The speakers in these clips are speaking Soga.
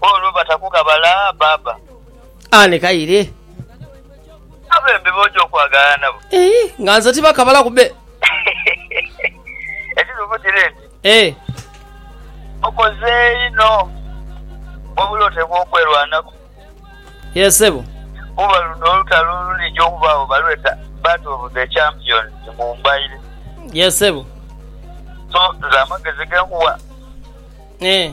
Olwo batakugha bala baba. Ah nekaire. Abembi boja okwagala nabo. Eeh nga nze tibakabalaku be. Ekitufu kiri nti. Eeh. Okoze inho wabula otekwa okwelwanaku. Yes sebo. Kuba luno olutalo olulija okubagho balweta Battle of the Champions mu mbaire. Yes sebo. So nze amagezi genkugha. Eeh.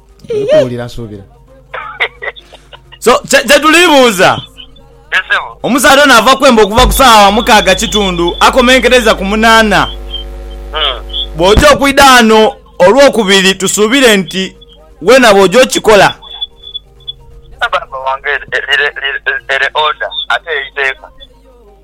Ndikuwulira nsuubira. So, kye, kye tuli buuza, Yes, sebo. omusaadha ono ava kwemba okuva ku saawa mukaaga kitundu akomenkereiza ku munaana. Mm. Bw'oja okwidha ghano Olwokubiri tusuubire nti weena bw'oja okikola. Baaba wange, lire, lire, lire, lire order, ate eiteeka.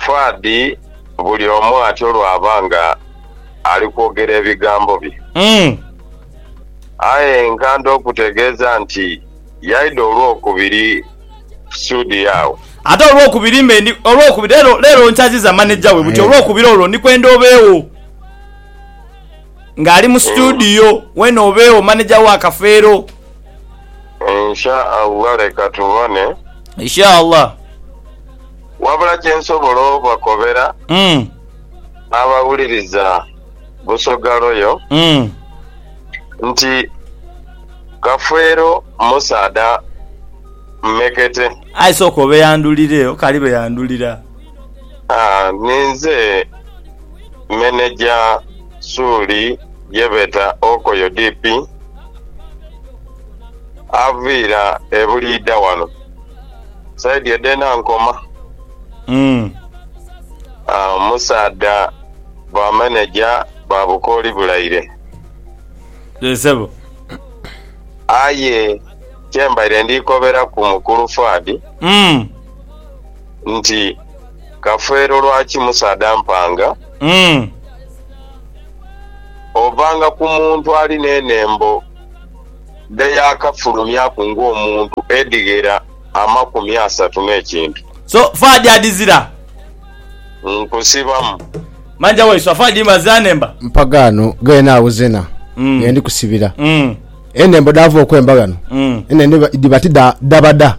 Fuad buli omu atyo lwaba nga ali kwogera ebigambo bye. Aye nkanda okutegeeza nti yaidha olwokubiri studio agho. Ate olwokubiri mbe ndi, olwokubiri, leero, leero nkyaziza maneja we buti, olwokubiri olwo ndi kwenda obeegho. Nga ali mu studio, weena obeegho, maneja wa Kafeero. Insha Allah leka tubone. Insha Allah. Wabula kye nsobola obakobera Mm. abawuliriza Busoga Royal Mm. nti Kafeero musaadha mmekete. Aye sooka obeyandulireyo kali beyandulira. Ninze meneja suuli ye beeta Okoyo DP, aviira e Buliidha wano saidi edh'e Nankoma. Omusaadha bwameneja bwa bukooli bulaire. Aye kye mbaire ndi koberaku mukulu Fuad. nti, Kafeero lwaki Musa adampanga? Ovanga ku muntu ali n'enhembo dhe yaakafulumyaku ng'omuntu edhighera amakumi asatu n'ekintu. So far gyadizira. Nkusibamu. Manja wai so far dhimba zanemba. Mpagaano gheene agho zena ye ndi kusibira. Enhembo dhaava okwemba ghano, enhembo edhiba ti dha dhabada.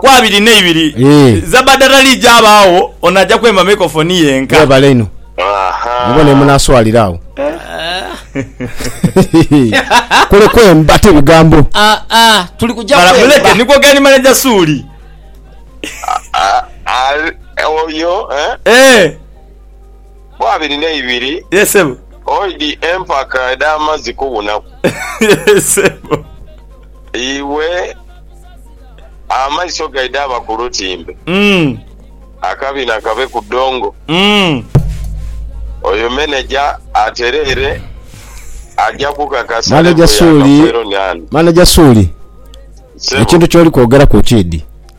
ku abiri n'eibiri Eeh. Zabadarali jabaagho ono aja kwemba microphone yenka. Mwebale inho. Mubone yemunaswalira agho. Kule kwemba ti bigambo. Ah ah tuli kuja Mala muleke kwemba. nikwo gani manager Suuli. Oyo eh. Eeh. bo abiri ne ibiri. Yee sebo. Oidhi empaka edha mazi kubunaku. Yee sebo. Iwe amaiso gaidha aba ku lutimbe. Umm. Akabina kabe ku dongo. Umm. Oyo meneja atereere aja kukakasa level ya Kafeero ni ani. Maneja Suuli, ekintu kyoli kwogeraku kiidhi.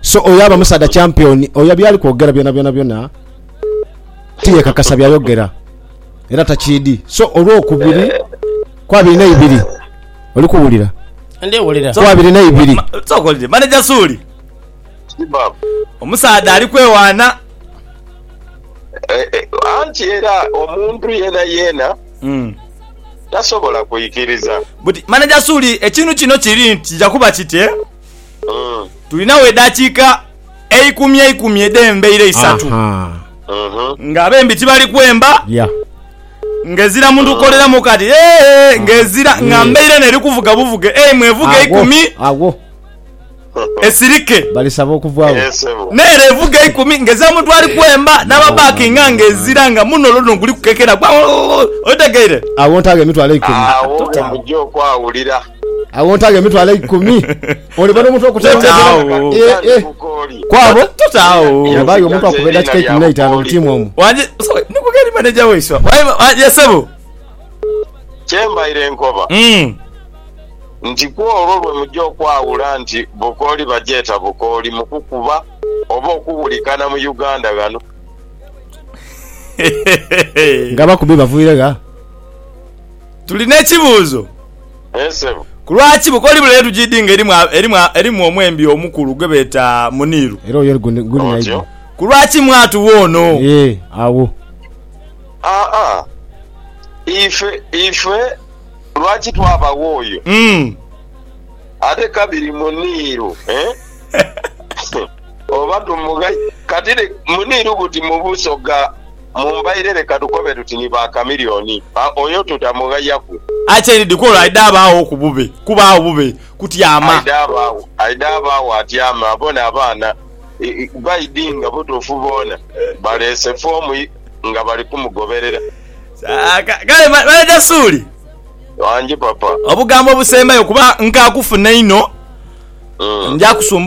So oyo aba musaadha champion oyo byali kwogera byona byona byona tiyekakasa byayogera era takyidi so olwokubiri kwabiri neibiri oli kuwulira Ndi wulira. kwabiri neibiri Ma- Sokolire manager Suuli. Kibab. Omusaadha ali kwewaana. Eh, eh, anti era omuntu yena yena Mm. tasobola kwikiriza But manager Suuli ekintu kino kiri nti kija kuba kiti eh? Tulinagho edhakiika eikumi eikumi edh'embaire isatu nga abembi tibali kwemba, ng'ezira muntu kukoleramu kati eeh, ng'ezira nga mbaire eno eri kuvuga buvuge. Ei, mw'evuga eikumi esirike, n'ere evuga eikumi ng'ezira muntu ali kwemba, n'ababakinga ng'ezira nga muno olwo luno guli kukekera gwa, otegeire? Agho oja okwawulira. Awo ntaagho emitwalo eikumi. Oliba n'omuntu okutegeera kwabo. Totaagho. Bayo omuntu akuba edakika eikumi n'eitaano mu tiimu omwo. Wanje, sorry, ni kugeri maneja waiswa. Wanje sebo. Kyembaire nkoba hmm. nti kwolwo lwe muja okwawula nti bukooli bagyeta bukooli mu kukuba oba okuwulikana mu Uganda ghano. Nga abakubi baviire gha? Tuli n'ekibuuzo. Ku lwaki bukoli bule endhuki idi nga erimu omwembi omukulu gwe beeta muniiru? Ku lwaki mwatu woono? Ife lwaki twaba wooyo ate kabiri muniiru? Oba tumughaire kati muniiru buti mu busoga? Mumbaire leka tukobe tuti ni ba Chameleone ba oyo tuta mughayaku. Aye kyeri Dikolo aidha abaagho ku bube kuba agho bube kutyama. Aidha abaagho aidha abaagho atyame abone abaana baidhi nga butuufu boona baleese foomu nga bali kumugoberera. Kale Manager Suuli. Wangi papa. Obugambo obusembayo kuba nkakufuna inho nja kusumbuuka.